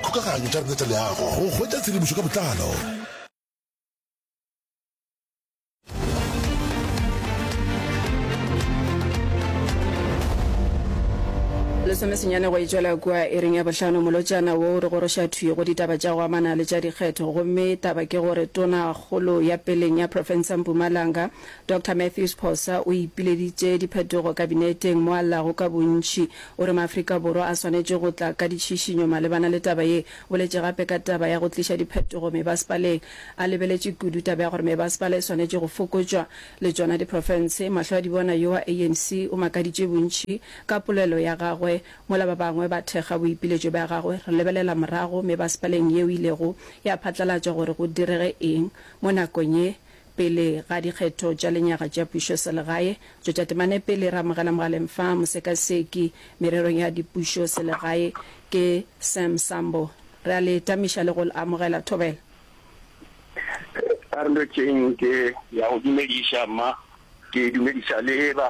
Kgokaganyo tša rena tša leago go hwetša tshedimošo ka botlalo. lesome senyane go e tšwela kua e reng ya bohlano molotšana wo o re goroša thwi go ditaba tša go amana le tša dikgetho gomme taba ke gore tonakgolo ya peleng ya profensa mpumalanga dr matthews phosa o ipileditše diphetogo kabineteng mo a llago ka bontši O re Maafrika Borwa a swanetše go tla ka ditšhišinyo malebana le taba ye. Boletše gape ka taba ya go tliša diphetogo mebasepaleng. A lebeletše kudu taba ya gore mebasepala e swanetše go fokotšwa le tšona diprofense. Mahlo-a-dibona yo wa ANC o makaditše bontši ka polelo ya gagwe mola ba bangwe ba thekga boipiletšo bja gagwe. Re lebelela morago mebasepaleng yeo e ilego ya phatlalatšwa gore go direge eng mo nakong ye Pele ga dikgetho tša lenyaga tša pušoselegae, tšo tša temane pele re amogela mogaleng fa mosekaseki mererong ya dipušoselegae ke Sam Sambo. Re a le tamiša le go amogela thobela. Re tšeeng ke ya go dumediša mma, ke dumediša le ba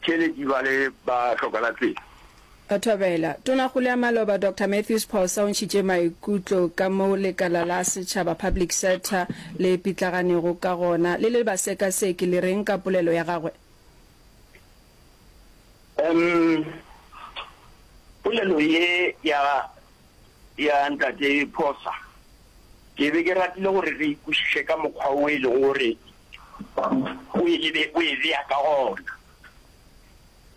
Tšheledi ba le ba hlokana tsela. Thobela. Tonakgolo ya Maloba Doctor Mathews Phosa o ntšhitše maikutlo ka mo lekala la setšhaba, public sector, le pitlaganego ka gona. Le le basekaseki le reng ka polelo ya gagwe? Umm polelo ye ya Ya Ntate Phosa, ke be ke ratile gore re e kwešiše ka mokgwa wo e lego gore o e lebe, o e bea ka gona.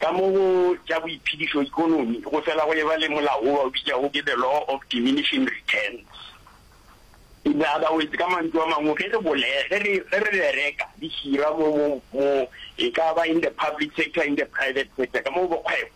Ka mo go tša boiphedišo, ekonomi, go fela go eba le molao wo ba o bitšago ke the law of diminishing returns. In other words, ka mantšu a mangwe, ge re bole, ge re, ge re bereka, re hira mo, mo, mo, e ka ba in the public sector, in the private sector, ka mo go bokgwebo,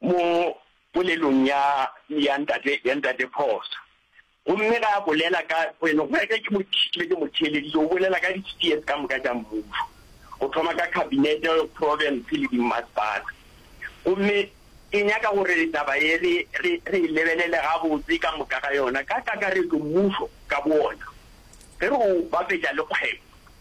Mo polelong ya ya ntate ya ntate Phosa, gomme ge a bolela ka wena, go ya ka ke mo ke ke mo theeleditše, o bolela ka di-spheres ka moka tša mmušo, go thoma ka khabinete, province le dimmasepala. Gomme ke nyaka gore taba ye re re re e lebelele gabotse ka moka ga yona, ka kakaretšo mmušo ka boona, ge re o bapetša le kgwebo.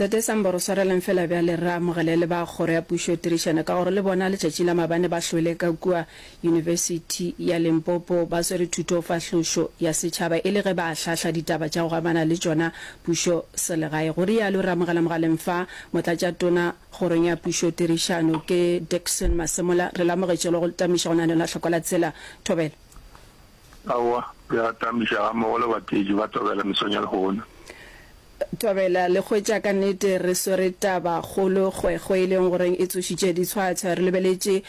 Tate Samboro swarelang fela bjale rre Amogele le ba kgoro ya pušo tirišana ka gore le bona letšatši la mabane ba hlwele ka kua Yunibesithi ya Limpopo ba swere thuto fahlošo ya setšhaba e le ge ba ahlahla ditaba tša go amana le tšona pušo selegae, go rialo Rre Amogela Mogaleng fa Motlatša Tona kgorong ya pušo tirišano ke Dickson Masemola re lamogetše le go tamiša go na ne la hloko la tsela. Thobela. Aowa, re atamiša gammogo le bateetši ba Tobela mesong ya lehono. Tobela, le hwetša ka nnete re swere taba kgolo kgwekgwe e leng gore e tsošitše ditshwatshwa. Re lebeletše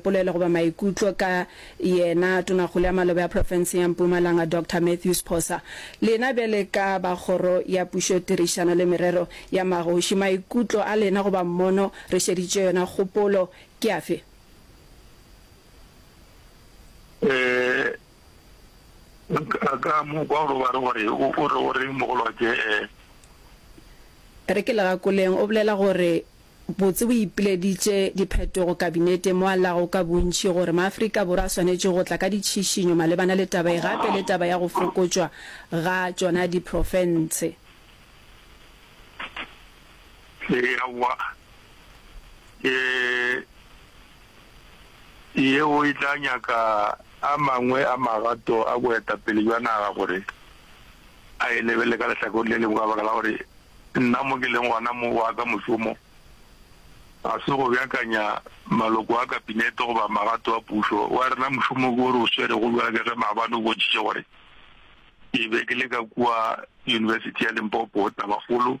polelo goba maikutlo ka yena Tonakgolo ya Maloba ya Profenseng ya Mpumalanga, Doctor Matthew Sphosa. Lena bjale ka ba Kgoro ya Pušo, Tirišano le Merero ya Magoši, maikutlo a lena goba mmono re šeditše yona kgopolo ke afe? Ee, ka mo kwa gore ba re gore o re o reng mogolwake? Ee. Re ke legakoleng o bolela gore botse bo ipileditše diphetogo Kabineteng mo a llago ka bontši gore maAfrika Borwa a swanetše go tla ka ditšhišinyo malebana le taba e gape le taba ya go fokotšwa ga tšona diprofense. Ee, aowa. Ee. yeo e tla nyaka a mangwe a magato a boetapele bja naga gore a e lebelele ka lehlakore le lengwe ka baka la gore nna mo ke leng gona mo, wa ka mošomo ga se go beakanya maloko a Kabinete goba magato a pušo. Wa rena mošomo ke o re o swerego bjale ka ge maabane o bontšhitše gore ke be ke le ka kua Yunibesithi ya Limpopo, Tabakgolo,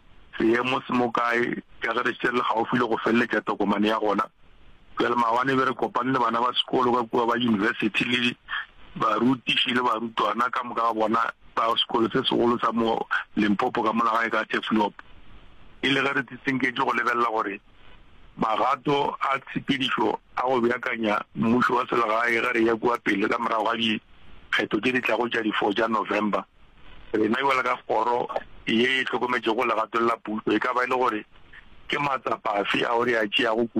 seemo se mo kae ka ge re šetše re le gaufi le go feleletša tokomane ya gona. Bjale maabane be re kopane le bana ba sekolo ka kua ba yunibesithi le barutiši le barutwana ka moka ga bona ba sekolo se segolo sa mo Limpopo ka mola gae ka Teflop. E le ge re tsitsenketše go lebelela gore magato a tshepedišo a go beakanya mmušo wa selegae ge re ya kua pele ka morago ga dikgetho tše di tlago tša di 4 tša November. Rena bjalo ka kgoro ye e hlokometšego legatong la pušo e ka ba e le gore ke matsapa afe ao re a tšeago kudu?